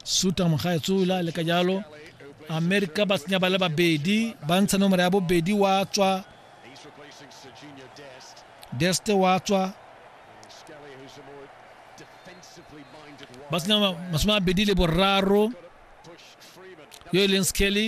suta mogaetsola le ka jalo amerika ba tsenya ba le babedi ba ntsha nomoro ya bobedi wa tswa deste wa tswa ba tsenya masome a bedi le boraro yo e leng skelly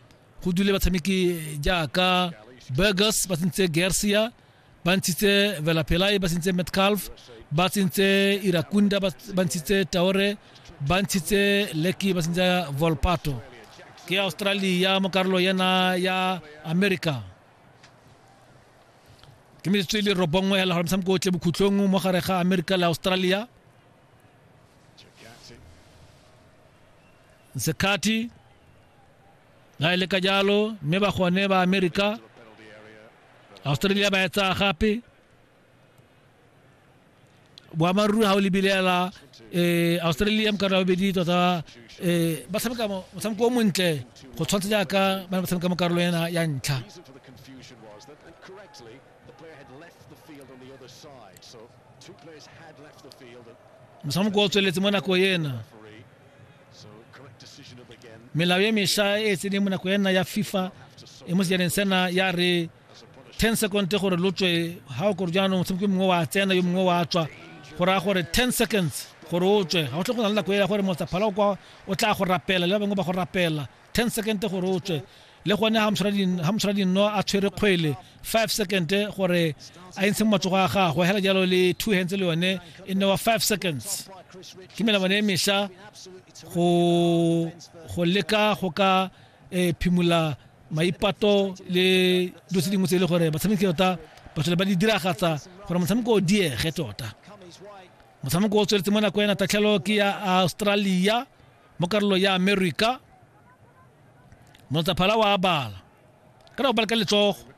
go dule batshameki jaaka burgers ba tsentse gersia ba ntshitse velapelai ba tsentse metcalf ba tsentse irakunda ba ntshitse taore ba ntshitse leki ba tsentse volpato ke australia mo karolo yena ya america ke metsotso e le robongwe hela gore motshameko o tle bokhutlong mo gare ga america le australia Zekati ga e le ka jalo mme ba gone ba amerika australia ba etsaya gape boammaaruri ga o lebilela um australia ka nako bobedi tota um ba tshameka motshameko o montle go tshwanetse jaaka ba ne ba tshameka mo karolo ena ya ntlha mosamoko o tsweletse mo nako ena melao e mesha e tseneng mo nako ena ya fifa e mo sejaneng sena ya re 10 second gore lo tswe ga o kore jaanong motshameko mongwe wa tsena yo mongwe wa tswa go raya gore 10 seconds gore o tswe ga o tle go na le nako e ya gore motsaphala o tla go rapela le ba bangwe ba go rapela 10 second gore o tswe le gone ha mosra dinno a tshwere kgwele 5 second gore a entshe matsogo a gagwe hela jalo le two hands le yone e nne wa 5 seconds ke melamane e mesha go leka go ka eh, phimola maipato le dilo tse dingwe tse e le gore batshameki tota ba tlhole ba di diragatsa gore motshameko o diege tota motshameko o tsweletse mo nako ena tatlhelo ke ya australia Mo karolong ya America, Motsaphala wa abala. Ka na go bala ka letsogo.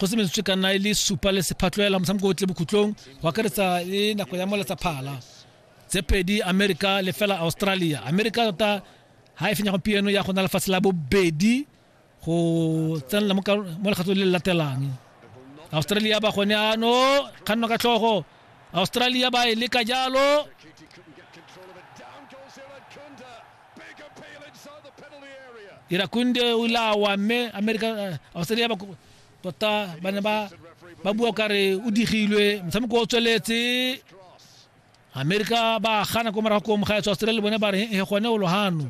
go se metsotso ka nna e le supa le sephatloela motshameko o tle bokhutlong go akaretsa le nako ya moletsa phala tse pedi america le fela australia america tota ga e fenya gompieno ya go na lefatshe la bobedi go tsenela mo lekgatlo le le latelang australia ba gone ano kganno ka tlhogo australia ba e leka jalo irakunde o ile awa mme america eh, australia ba tota ba ne ba ba bua kare o digilwe motshameko o tsweletse america ba gana ko morago ko mogaetso australia bone ba re e gone o lohano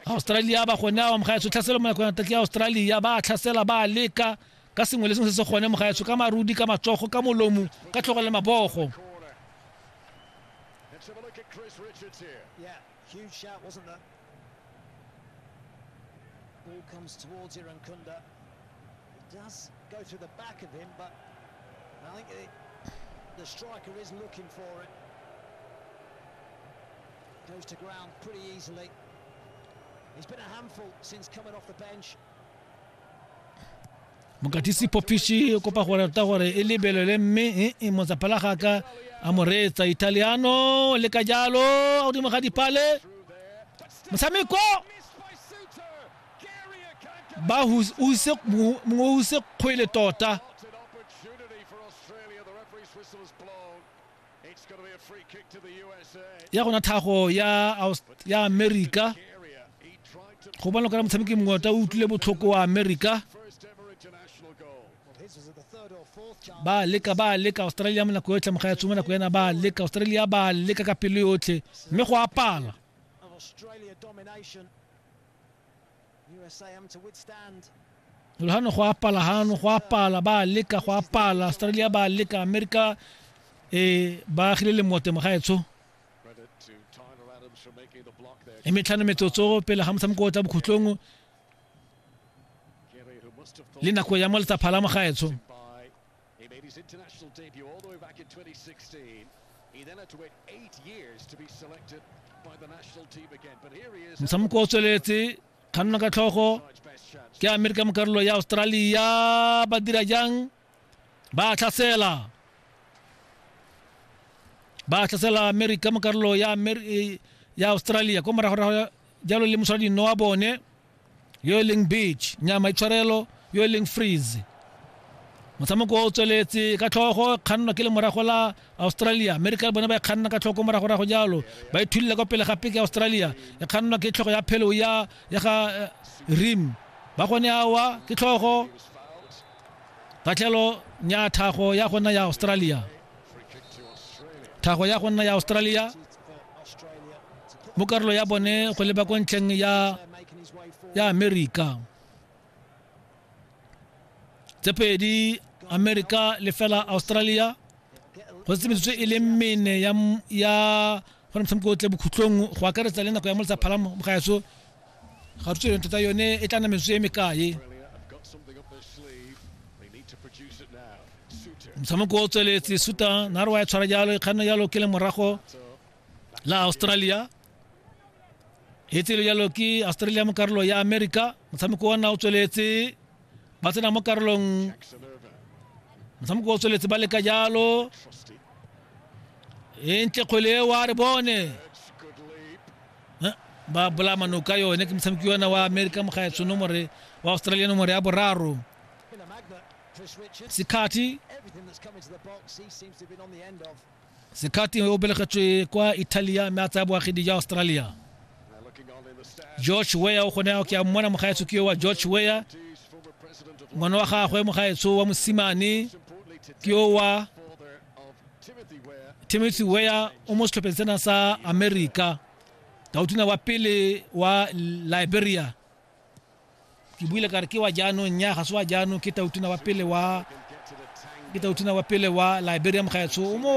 australia ba gone ao mogaetsho tlhaselo monakong ya tatli ya australia ba tlhasela ba leka ka sengwe le sengwe se se gone mogaetsho ka marudi ka matsogo ka molomo ka tlhogo le mabogo Let's have a look at Chris Richards here. Yeah, huge shout, wasn't there? Ball comes towards Irankunda. It does go through the back of him, but I think the, the striker is looking for it. Goes to ground pretty easily. He's been a handful since coming off the bench. mokatisi popiši o kopa gore ta gore e lebelele mme e e motsapala ga ka a mo reetsa italiano le ka jalo a godimo ga dipale motshameko ba use mongwe use kgwele tota ya gona thago ya ya america go bona kana motshameki mongwe ta utlwile botlhoko wa america ba leka ba leka australia mo nako yotlhe moga ya tsoma nako yana ba leka australia ba leka ka pelo yotlhe mme go apala lolhano go apala hano go apala ba leka go apala australia ba leka america e ba agile le mote mogaetsho e metlhano metsotso pele ga motshameko o tla bokhutlong le nako ya mo letsa phala mogaetsho He made his international debut all the way back in 2016. He then had to wait eight years to be selected by the national team again. But here he is. motshameko o tsweletse kganna ka tlhogo Side's best chance. ke amerika mo karolo ya australia ba dira jang ba tlhasela ba tlhasela amerika mo karolo ya Amer- eh, ya australia ko moragorago jalo le moswadi nno wa bone yo e leng beach nyama e tshwarelo yo e leng freeze motshameko o tsweletse ka tlhogo kgannwa ke le morago la australia america le bone ba e kganna ka tlhoko moragorago jalo ba ithulile kwa pele gape ke australia e kgannwa ke tlhogo ya phelo ya ya ga eh, rim ba gone awa ke tlhogo katlhelo nya thago ya gona ya australia thago ya gona ya australia mo karolo ya bone go leba ko ntlheng ya ya amerika tse pedi amerika le fela australia go se metsotso e le mene ya ya go motshameko o tle bokhutlong go akaretsa le nako ya molisa phalamo mogaetso ga rutse yone tota yone e tla na metsotso e mekae motshameko o tsweletse suta nare wa e tshwara jalo e kganna jalo ke le morago la australia e tsele jalo ke australia mo karolo ya america motshameko wa nna o tsweletse ba tsena mo karolong motshameko o tsweletse ba leka jalo e ntle kgwele e wa re bone ba bola manoka yone ke motshameki yona wa america mogaetsho nomore wa australia nomore ya boraro sikhathi sikhathi o belegetswe kwa italia mme a tsaya boagedi jwa australia george weya o kgone ke a mmona mogaetsho ke yo wa george weya ngwana wa gagwe mogaetsho wa mosimane ke yo wa timothy weya o mo setlhopheng sena sa america tautuna wa pele wa liberia ke buile kare ke wa jaanong nya ga se wa jaanong ke tautuna wa pele wa ke tautuna wa pele wa liberia mogaetsho o mo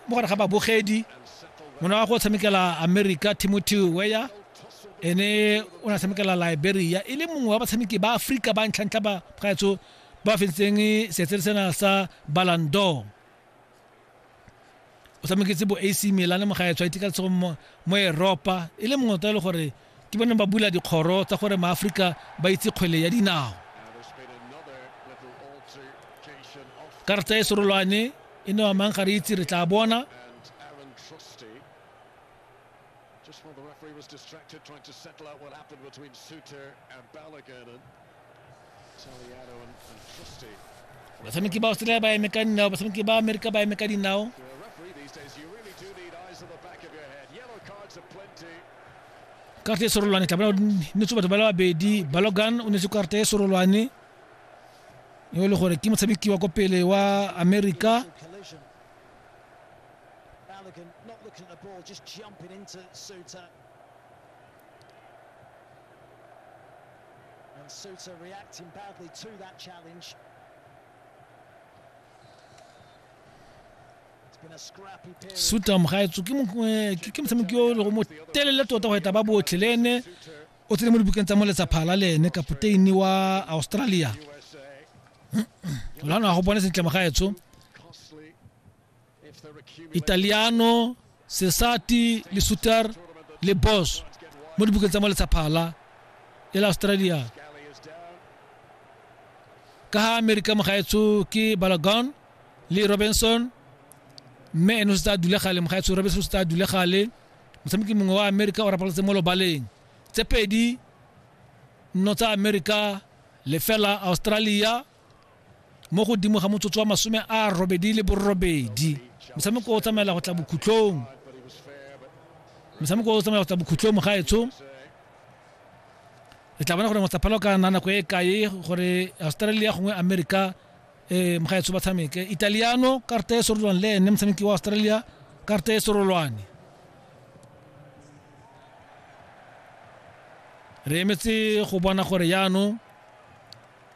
mo gare ga babogedi mona wa go tshamekela america timothy weya ene o na tshamekela liberia e le mongwe wa batshameki ba aforika ba ntlhantlha ba gaetso ba fentseng setsere sena sa balandor o tshameketse bo ac milane mo gaetsho a itika letshogo mo eropa e le mongwe tota e le gore ke bone ba bula dikgoro tsa gore maaforika ba itse kgwele ya dinao karata e serolwane e ne wa mang ga re itse re tla bona basameki ba australia ba eme ka dinao basameki ba amerika ba eme ka dinao karte e sorolwane tla bona netse batho ba le babedi balogan o netse karte e sorolwane yo e le gore ke motshameki wa ko pele wa amerika Balogun not looking at the ball, just jumping into Suter. And Souttar reacting badly to that challenge. suta mogaetso ke motshameki o le go mo telele tota go eta ba botlhe le ene o tsene mo dibukeng tsa mo letsaphala le ene kapoteini wa australia lwana go bone sentle mogaetsho italiano sesati le suter le bos mo dibukeng tsa mo letshaphala e la australia ka ha amerika mogaetsho ke balagon le robinson mme eno se tsa dule gale mogaetsho robinson se tsa dule gale motshameki mongwe wa amerika o rapaletse mo lobaleng tse pedi nno tsa amerika lefela australia mo godimo ga motsotso wa masome a robedi le borobedi motshameko o tsamaela go tla bokhutlong motshameko o tsamaela go tla bokhutlong mogaetsho re tla bona gore motsaphala o ka na nako e kae gore australia gongwe america um mogaetsho ba tshameke italiano karta e sorolwane le ene motshameki wa australia karta e sorolwane re emetse go bona gore yaanong